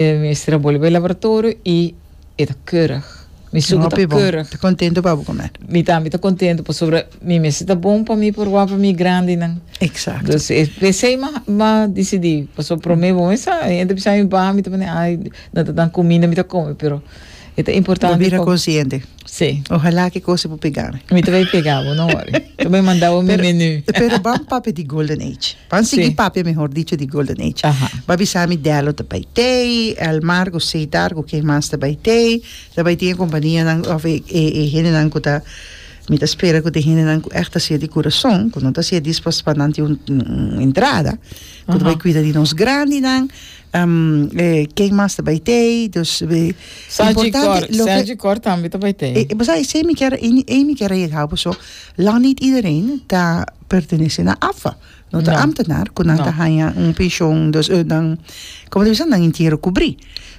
E mester a bolbe laboratorio y e ta keurig. Mi suku ta keurig. Ta contento pa bo comer. Mi tambe ta contento pasobra mi mester ta bon pa mi por wak pa mi grandinan. Exacto. Dus e p'esey m'a decidi pasobra prome bo mester sa. Hende bisa mi baha mi ta mandi ay nan ta dan cuminda mi ta come pero e ta importante. Bo bira consciente. Sí. Ojalá ki cosa bo pega mi. Mi ta bay pega bo, no worry. Ta bay manda bo mi menu. Pero ban papia di Golden Age. Ban sí. sigui papia mehor dicho di Golden Age. Aha. Ba bisa mi Delo ta bay tey, Elmar cu Cedar cu ken mas ta bay tey. Ta bay tin e companianan of e e hendenan cu ta mi ta spera cu ta e hendenan cu echt ta hacia di curason, cu no ta hacia dispues pa nan tin un un entrada cu ta bay cuida di nos grandinan. Um, e, ken mas ta bay tei, dus... e, Saji importante, Cor, lo que- Saji Cor también te bij thee. Eh, Basa, ese mi quiere, en- en mi quiere llegar, boso, lang niet iedereen ta pertenece na AFA. No ta No. ambtenaar, kun nan No. ta hanja un pensioen, dus, eh, dan, como te bisa, dan entierro cubrí.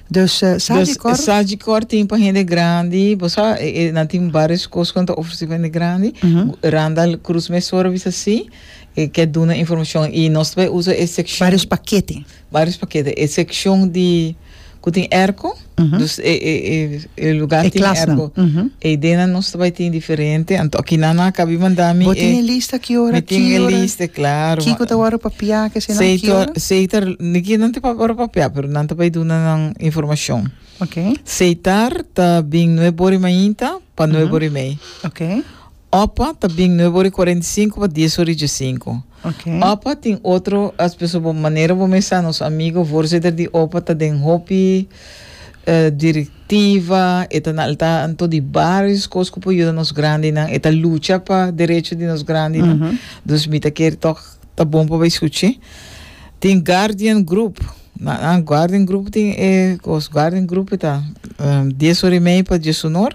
Dus, eh, sa Dus, di kor, Saji Cor tin pa hende grandi, bo sa, e, e, nan tin varios cos con ta ofreci pa hende grandi. Mhm. Randall Cruz me sora bisa si, e, ke duna informacion. Y nos ta bay usa e seccion. varios paquete. Barios pa keda e seccion di cu tin airco dus e e e e lugar tin airco e idee nan nos ta bai tin diferente anto akinan nan a cabi manda mi e mi tin e lista claro seita seita niki nan tin ora pa pia pero nan ta bai duna nan informacion seitar ta bin nuebe ora y mainta pa nuebe ora y mei. Opa ta bin nueve ora i cuarenta i sinku pa dies ora i djasinku. Opa tin otro as persoa bo manera bo mesa nos amigo voorzitter di opa ta den hopi directiva e ta na al tanto di varios cos cu por yuda nos grandinan e ta lucha pa derecho di nos grandinan dus mi ta kere tok ta bon pa bay suchi tin guardian group guardian group tin e cos guardian group e ta dies ora i mei pa djesunor.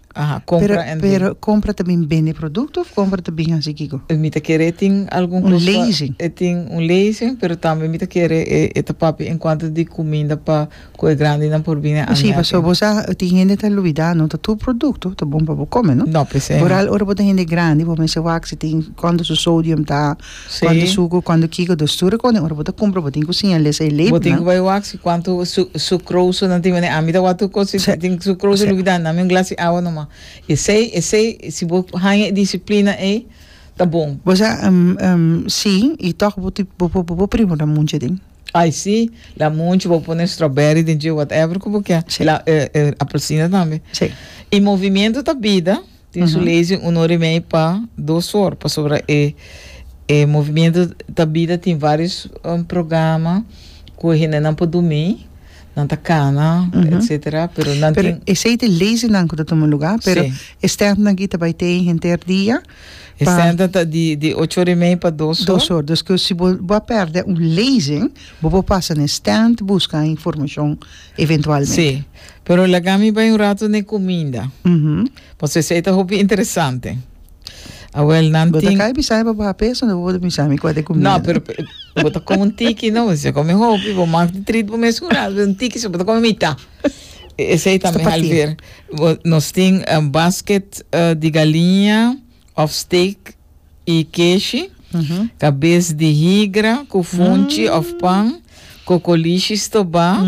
Aha, compra en den. Pero compra ta bin bende producto of compra ta bin haci kico? Mi ta kere e tin algun cos. Un leasing. E tin un leasing, pero tambe mi ta kere e e ta papia en cuanto di cuminda pa cu e grandinan por bini a almuerzo. Si, pasobra bo sa tin hende ta lubida no ta tur producto ta bon pa bo come, no? No, p'esei no. Boral ora bo ta hende grandi bo mester wak si tin cuanto su sodium ta, Cuando sucro, cuando kico dos tur recone ora bo ta cumpra bo tin cu señal esey leep nan. Bo tin cu bay wak si cuanto su sucroso nan tin mende ami ta wak tur cos si tin sucroso lubi dan nami un glas di awa noma y esey esey si bo haña e disciplina ey ta bon. Bo sa si y toch bo ti bo bo bo primo da munchi den. Ay si la munchi bo pone strawberry den dje whatever cu bo kier la e e apelsina tambe y movimiento ta bida. Tin su lezen uno remei pa dos for, pasobra e e movimiento ta bida tin varios um, programa cu hendenan por dumi, nan ta cana, etc. Pero nan tin. Pero esey ta lezennan cu ta tuma lugar, pero e standnan aki ta bay tey henter dia pa. E standnan ta di di ocho ora y mei pa dos for. Dos for, dus cu si bo bo a perde un lezen bo por pasa na e stand busca informacion. eventualmente. Sí, pero laga mi bai un rato n'e cuminda. Paso esey ta hopi interesante. Awel nan Bo ta tin... kai bisami pa baha peso na bo ta bisami kua de comida. No, pero pe- bo ta come un tiki, no? Se come hopi, bo mag di treat bo mes un rato, pero un tiki so bo ta come mitá. E- Esey tambe Stapatí. halver. Bo- Nos tin eh, basket eh, di galinha of steak i keshi, kabes di higra ku funchi òf pan, kokolishi stobá,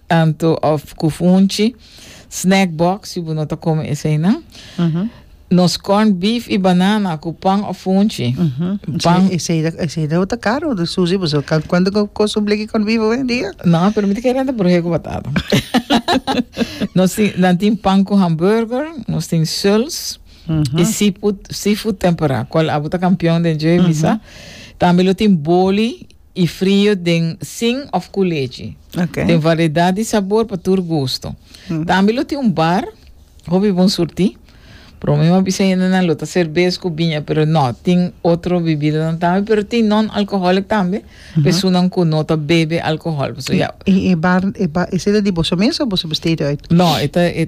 anto òf ku funchi, snack box, si bo no ta kome eseinan, nos corned beef i banana ku pan òf funchi. Pan. Esei dau ta karu, Susi, bo sa kuantu ku kost un bleki corned beef owendia? No, pero mi ta kere renta brohe ku batata. Nos tin, nan tin pan ku hamburger, nos tin suls. E seafood, seafood temperá, cual abo ta campeon den dje bisa. Tambe lo tin boli y frio den sin of cu lechi. Okay. Den variedad y sabor pa tur gusto. Tambe lo tin un bar, hopi bon surti. Pero mi a bisa yendenan lo ta cervez cu biña, pero no, tin otro bebidanan tambe, pero tin non-alcoholic tambe, pesunan cu no ta bebe alcohol. So ya, Y e bar, e bar, esey ta di boso mes o boso besteed uit? no, e ta, e ta.